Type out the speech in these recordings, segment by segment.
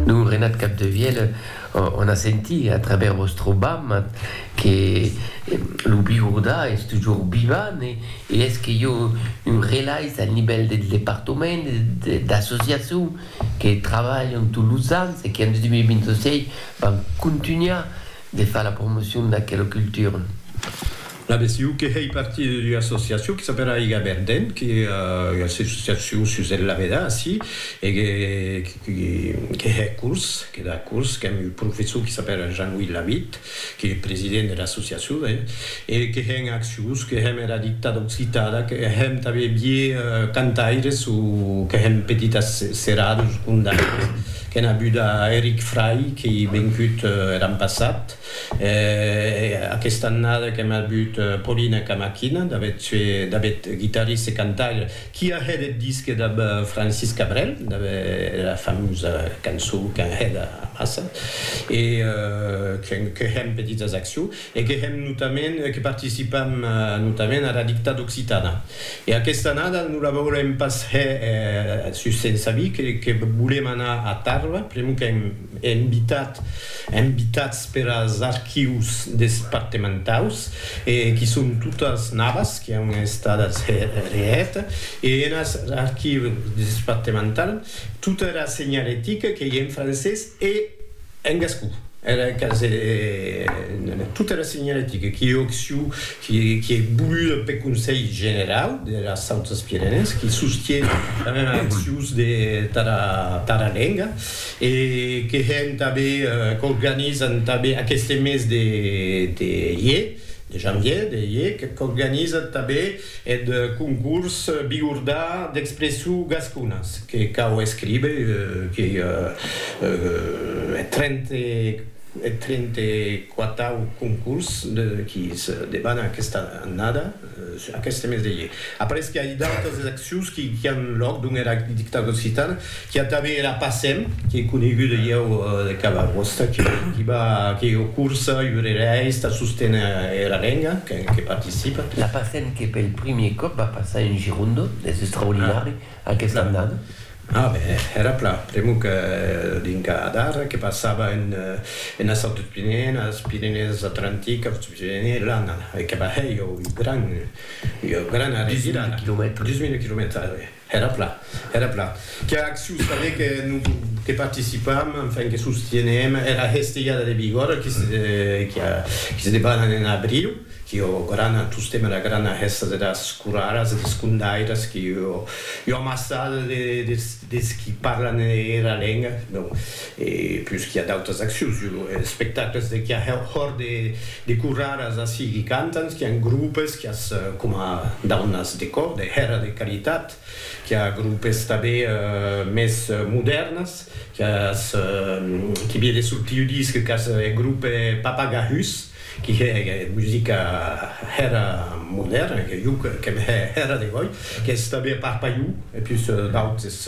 Don Renat Capdevièlh, on a sentit a travèrs vòstre bam que lo Bigordà es tujor vivant e es que i a un relais al nivèl del departament e d'associacion que trabalhan tots los ans e que en 2026 van contunhar de far la promocion d'aquela cultura. L'adhesiu que hèi partir d'ua associacion que s'apèla Aiga Verden, que ua associacion sus el Laveda, ací, e que que hè curs, que da curs, qu'èm un professor que s'apèla Jean-Louis Lavitt, que hè president de l'associacion, hè, e que hèn accions, que hèm era dicta d'occitada, que hèm tanben vier cantaires o que hèm petitas seradas o condaires, qu'èn avuda Eric Fray, qu'ei vengut er an passat, E aquesta annada qu'èm avut Polina Kamakhina, David Tue, David, guitarrista e cantaire, qui a hèt eth disque damb Francis Cabrel, damb era famosa cançó qu'an hèt amassa, e que hèm petits as accion, e que hèm notament, que participam notament ara dicta d'Occitana. E aquesta annada non la volem pas hèr sus Sensabí, que volem anar a Tarba, pr'amor qu'èm, embitats peras archius despartementaus e qui son totas navas qui an estadas hèt e enas archiu despartemental tota era senhalética qu'ei en francés e en gascon era quasi tota era senhalética qui ei occiu qui ei voluda peth Conselh Generau dera Sautas Pirenèes qui sostie damb era accius de tara lenga e que hèn tanben, qu'organizan tanben aqueste mes de de ier, de janvier, de ier, qu'organizan tanben eth concurs Biordar d'expressions gasconas, que cau escriber que eth trente eth trente quatau concurs de qui se debana aquesta annada. Aqueste mes de ier. Apareis qu'i a d'autas exaccions qui an lòc dons era dictadura occitana, qu'i a tanben era PACEM, qu'ei coneguda ieu de cada costat, qui va, qu'ei o cursa, i urereis tà sosténer era lenga, que participa. La PACEM que pel primier còp va passar en Gironde, es extraordinari. A qué s'l'an dat? A ben, èra pla, pr'amor que dins Gadar, que passava ena sòrt des Pirenèen, as Pirenèes Atlantic, aus Pirenèes Lana, e que va hèr ua gran, ua grana revirada. Dus mil quilomètres. Dus mil quilomètres, oui. Èra pla, èra pla. Qu'ua accion tanben que non, que participam, enfin, que sostienem, èra Hesteiada de Bigòrra, qui se, qui se debana en abriu. Que ò grana tostemp era grana hèsta de das coraras e des condairas que ò amassada des qui parlan era lenga, donc e plus qu'i a d'autas accions, jo lo espectacles de qu'i a hòr de coraras ací qui cantan, qu'i an groupes, qu'i as coma daunas de cò, de hèra de caritat, qu'i a groupes tabé mès modèrnas, qu'i as qui vie de sortir ua disc, qu'i as e groupe Papagahus. qui hè musica hèra modèrna, que jo qu'èm hè hèra de gòi, qu'es tanben pas pas jo, e pus d'autes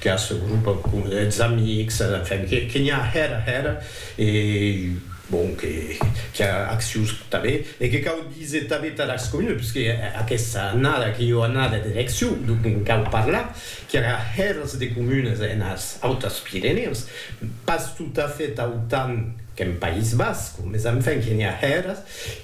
que as grupa com es amics, enfin, que n'i a hèra hèra, e bon, que qu'i a accius tanben, e que cau díser tanben tara es comunes, puisque aquesta annada que jo annada de elecciu, donc en cau parlar, qu'i a hèras de comunes enas Autas Pirenèas, pas tot a fait autant, Qu'en País Basc, mes enfin que n'i a hèras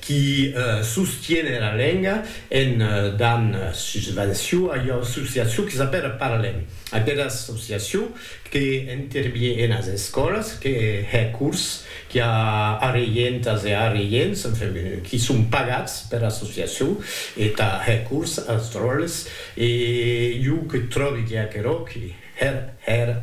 qui sostiene era lenga en dan susvenció a ua associacion que s'apèra Parlem, aquera associacion que intervie enas escòlas, que hè cors, qui a arreientas e arreients, enfin, qui son pagats pera associacion e tà hè cors as dròlles e jo que tròbi que aquerò qui. Hèr, hèr,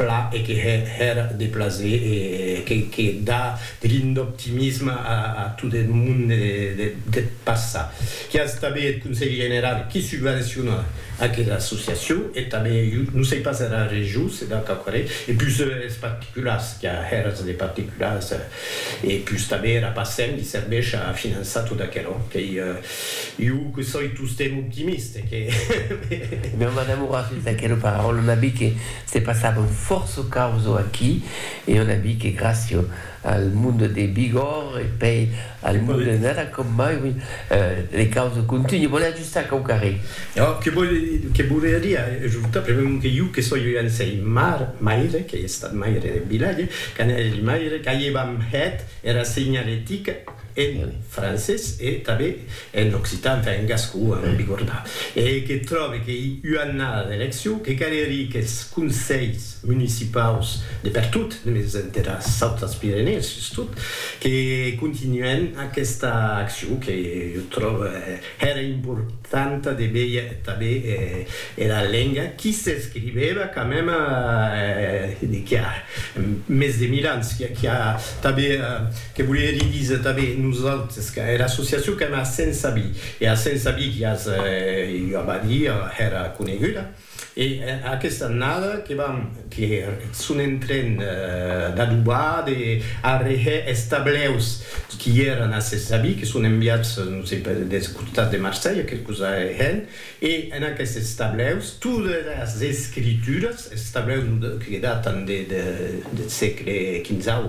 pla e que hè, hèr, de plaser e que que da de l'ind'optimisme a a tot eth monde de deth passat. Qu'i as tanben eth Conselh Generau qui subvenciona aquera associacion e tanben, jo non sei pas era region se da quauquarré, e pus es particulars, qu'i a hèrs de particulars e pus tanben era PACEM li serveish a finançar tot aquerò qu'ei Iu que soi tostemp optimiste, que. Meu madame aurà sus d'aquela paraula una bi que se passava un fòrço causo aquí e una bi que gràcia al monde de Bigòr e pei al monde de Nara com mai, oui, le causo continue. Volè ajustar quauquarre? No, que volè dir, que volia dir ajustar premèu que iu que soi un anselh mar, maire, qu'ei estat maire de Vilalle, qu'anèli maire, qu'aievam hèt era segnaletica, en francés e tanben en occitan, enfin en gascon, en bigornà, e que tròbe qu'ei ua annada d'eleccion, que calerie qu'es conselhs municipaus de pertot, mès enteras autas Pirenèes sustot, que continuèn aquesta accion que jo tròbe Hèra importanta de veir tanben era lenga qui s'escrivèva quand mème qu'i a mès de mil ans, qu'i a tanben, que volie díser tanben nosaltres, era associacion qu'èm a Sensabí, e a Sensabí qu'i a, jo ava a díder, hèra coneguda. E aquesta annada que vam que son en tren d'adobar, de arreher es tableus qui èran a ses avis, que son enviats, non sei pas, des costats de Marselha, quicòs arrehèn, e en aquestes tableus todas es escrituras, es tableus que datan deth sègle quinzau,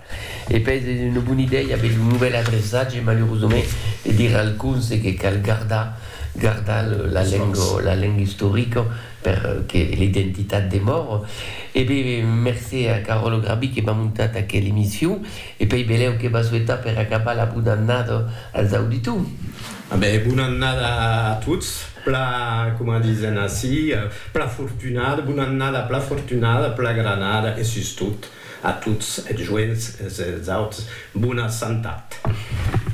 E pes es una bona idèia aver lo novèl adreçatge, malurosament, de dire al conse que cal gardar, gardar la lenga, la lenga istorica per que l'identitat demòre. E be, mercé a Caròlo Grabí que m'a montat aquela emission e pei belèu que va suetar per acabar la bona annada als auditors. A be, bona annada a tots, pla, coma disen ací, pla fortunada, bona annada pla fortunada, pla granada e sustot A tots eth joents es auts, bona santat.